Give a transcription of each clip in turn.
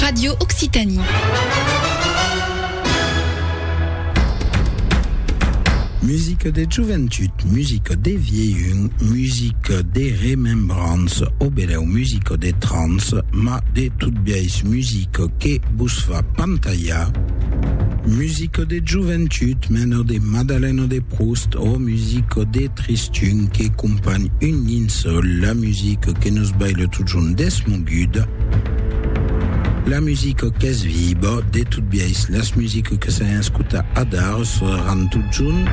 Radio Occitanie. Musique de joventut, musique de vieilhun, musique de remembrance, o beleu musique de trans, ma de tout biais musique que vos fa pantallar. Musique de joventut, meno de Madaleno de Proust, ò musico de Tristun que companh un linceul, la musico que nos baila totjorn desmoguda, la musico qu'es viba, de tot biais las musico que s'an escuta adar sonaran totjorn.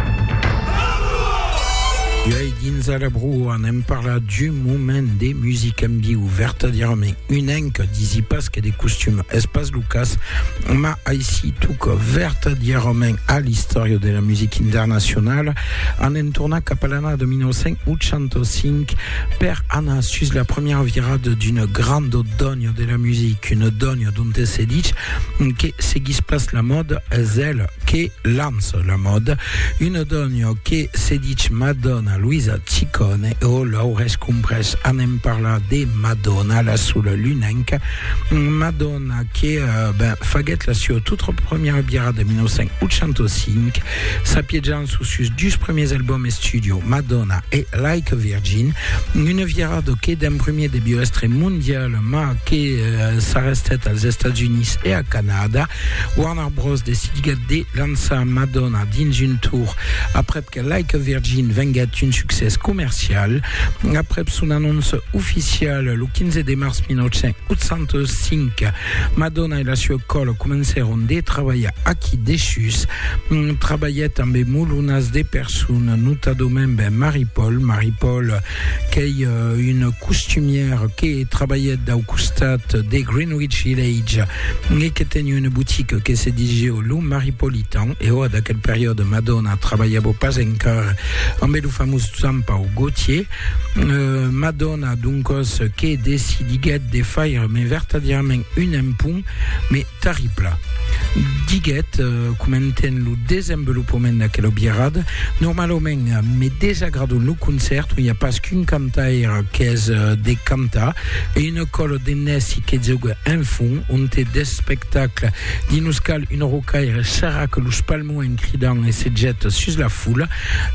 Uèi dins Alabrua anem parlar d'un moment de musica en viu, vertadièrament un que disi pas que de costum es pas lo cas, ma aici toca vertadièrament a l'istòria de la musica internacionala en en tornar cap a l'annada 1985 per anar sus la premiera virada d'una granda dònia de la musica, una dònia donte se ditz que seguís pas la mòda, es el que Lanço la mòda, una dònha que se dich Madonna Luisa Ciccone o Laures Cumbrès anem parlar de Madonna, la sola lunenca Madonna que ben, faguèt la sua tota premiera biara de 1985, s'apiejant sus sus dus premiers albums estudio, Madonna e Like a Virgin, una virada que d'un premier debió èstre mondiala mas que s'arrestèt als Estats Units e a Canada. Warner Bros. Decidiguèt de lançar Madonna dins un tour aprèp que Like a Virgin venguèt un succès comercial. Aprèp son anóncia oficiala lo 15 de març 1985, Madonna e la sua còla comencèron de trabalhar aquí dessús. Trabalhèt ambe molunas de personas, notadament Marie Paul, Marie Paul, qu'ei una costumièra que trabalhèt dau costat de Greenwich Village e que teni una botica que se disiu Lo Maripolitan e oa d'aquel periòde Madonna trabalhava pas encara amb lo famós Jean-Paul Gaultier euh, Madonna doncòs que decidiguèt de faire mai vertadièrament un empont mai Terribla, diguèt, comentènt lo desenvolopament d'aquela biarrada, normalament me desagrada un lo concèrt ont i a pas qu'un cantaire qu'es de cantar e una còla de nèci que joga en fon, ont e d'espectacle d'i nos cal un rocaire serra que los palmons en cridant e se jeta sus la foula,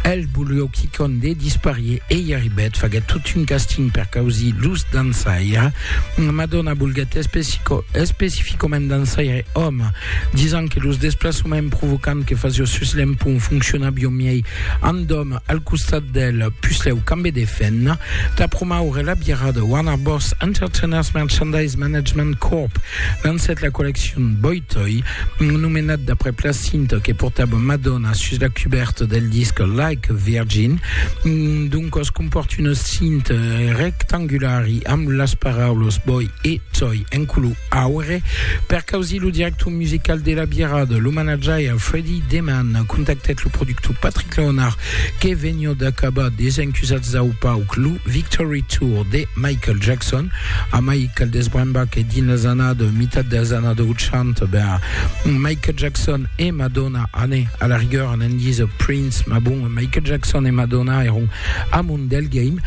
el volió quicòm de disparier e i arribèt, faguèt tot un casting per causir los dançaires. Madonna volguèt especificament dançaire òme, disant que los desplaçaments provocants que fasió sus l'empont foncionavió miei amb òme al costat d'el. Puslèu cambe de fin. Tà promoure la birrada, Warner Bros. Entertainers Merchandise Management Corp. lancèt la colleccion Boy Toy, nomenat d'après la cinta que portava Madonna sus la cubèrta del disc Like a Virgin, dont cos compòrt una Cint rectangulari amb las paraulas boi e coi en color aure per causir lo director musical de la Bierada, lo manajaire Freddy Deman contactèt lo productor Patrick Leonard que veniá d'acabar Desencusats dau pauc lo Victory Tour de Michael Jackson a mai cal desbrembar que dins las annadas mitat dels annadas 80 ben Michael Jackson e Madonna anè a la rigueur an endís ò Prince mas bon Michael Jackson e Madonna èron amont del game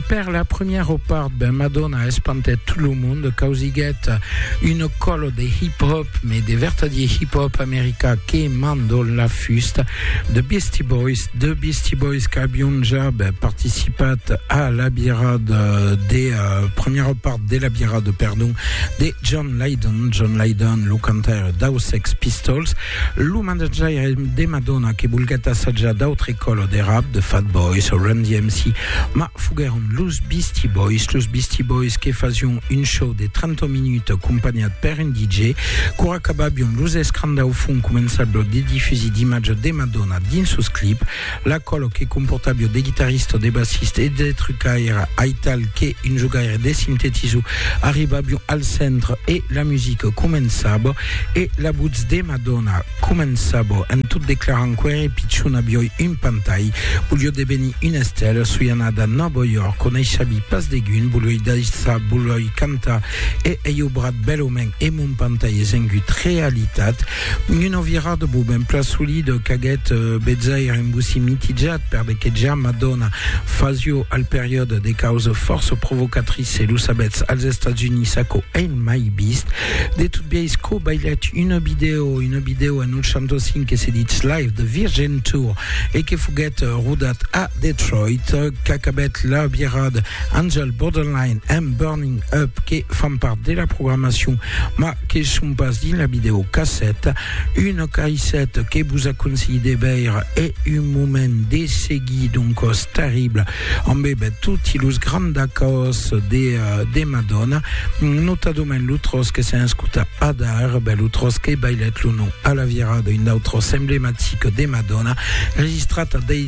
per la premièra ò part ben Madonna espantèt tot lo monde causiguèt un còlo de hip hop mais de vertadier hip hop america que mando la fusta de Beastie Boys de Beastie Boys qu'abion ja ben participat a la birada de premièra ò part de la Bira de Perdon de John Lydon. John Lydon, lo cantaire dau Sex Pistols, lo manager de Madonna que volguèt assajar d'autre colo de rap, de Fat Boys o Run DMC, ma foguèron los Beastie Boys, los Beastie Boys que fasión un show de 30 minutes acompanhat per un DJ, qu'ora acababión los escrans dau fum començabión de difusir d'imatges de Madonna dins sos clips, La còlo que comportàvio de guitarrista, de bassista e de trucaire aital que un jogaire de sintetizo arribàvion al centre e la musica començava e la votz de ma dòna començava en tot declarant qu'ère pichona vioi un pantai volió devenir una estèla soi anada Nòva York coneishavi pas degun volioi daissar volioi cantar E ei obrat bèlament e mon pantai es engut realitat. Una virada bo ben plan solida qu'aguèt betzaire un bocí mitijat per de que ja Madonna fasio al periòde de causa fòrça provocatrice, lo sabètz, als Estats Units aquò ei mai vist. De tot biais quò bailèt una vidèo, una vidèo en 85 que se ditz Live the Virgin Tour e que foguèt rodat a Detroit, qu'acabèt la virad Angel Borderline and Burning Up que fan part de la programacion ma que son pas dins la vidèo casset un caisset que vos aconselhi de veire e un moment de seguir d'un còs terrible amb ebet toti los grands acòs de, de Madonna notadament lo tròç que s'en escuta adar ben lo tròç que bailèt lo nom a la virada un d'autres emblematic de Madonna registrat a dei